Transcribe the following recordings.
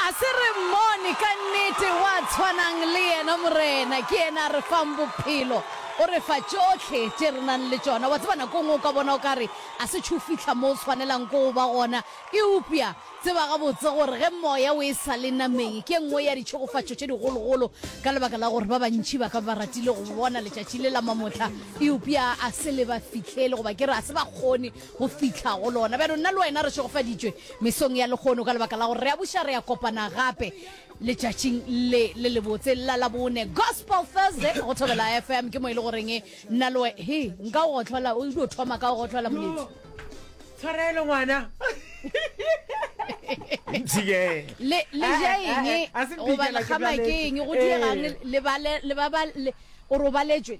A se re mmone ka nnete wa tshwanang le yena, Morena. Ke yena a re fang bophelo, o re fa tšohle tše re nang le tšona. Wa tseba, nako e nngwe o ka bona o ka re a se tšho fihla mo o swanelang ke go ba gona, eupja tseba gabotse gore ge Moya o e sa le nameng, ke e nngwe ya ditšhegofatšo tše digologolo, ka lebaka la gore ba bantši ba ka be ba ratile go bona letšatši le la mamotla, eupja a se le ba fihlele, goba ke re a se ba kgone. go fihla go lona. Bjalo nna le wena re šegofaditšwe mesong ya lehono ka lebaka la gore re a buša, re a kopana gape letšatšing le le lebotse la labone gospel thursday go thobela fm ke mo e le goreng nna le we- he nka o gotlhola o dio thoma ka o gotlhola moletsi tshwarelo ngwana ntshike le le Eh, ja eh, eng eh, eh, a se goba mpikela ke lekgama ke bjaletše. eng go diegang Eh. le bale le ba ba le o robaletšwe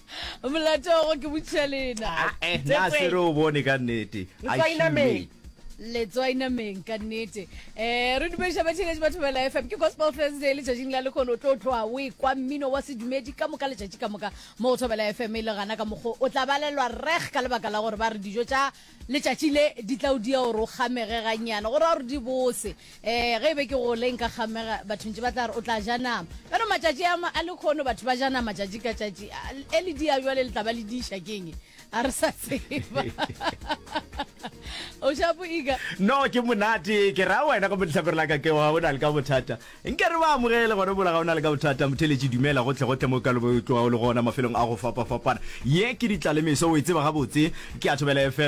Molato go ke botšiša lena. Ah, eh, na se re o bone ka nnete. Letswai nameng. Letswai nameng ka nnete. Eh, re dumediša batšheletši ba Thobela FM. Ke Gospel Thursday le tšatšing la lekgono o tlo tloa o ekwa mmino wa sedumedi ka moka letšatši ka moka mo Thobela FM e le gana ka mokgo o tla balelwa reg ka lebaka la gore ba re dijo tša Letšatši le di tla o dia gore o kgamege gannyane, go ra gore di bose. Ee, ge e be ke gole nka kgamega, batho ntše ba tla re, O tla ja nama. Bjalo matšatši a, a lekhono batho ba ja nama tšatši ka tšatši. A, e le dia bjale le tla ba le diša keng? A re sa tseba. O shapo Iga? No, ke monate. Ke ra wena gomme lehlakore la ka ke wa o na le ka bothata. Nke re ba amogele gona mola ga o na le ka bothata. Motheletši dumela gohle-gohle mo o ka le bo o tloga o le gona mafelong a go fapa-fapana. Ye ke Ditlalemeso, o e tseba gabotse. Ke ya Thobela FM.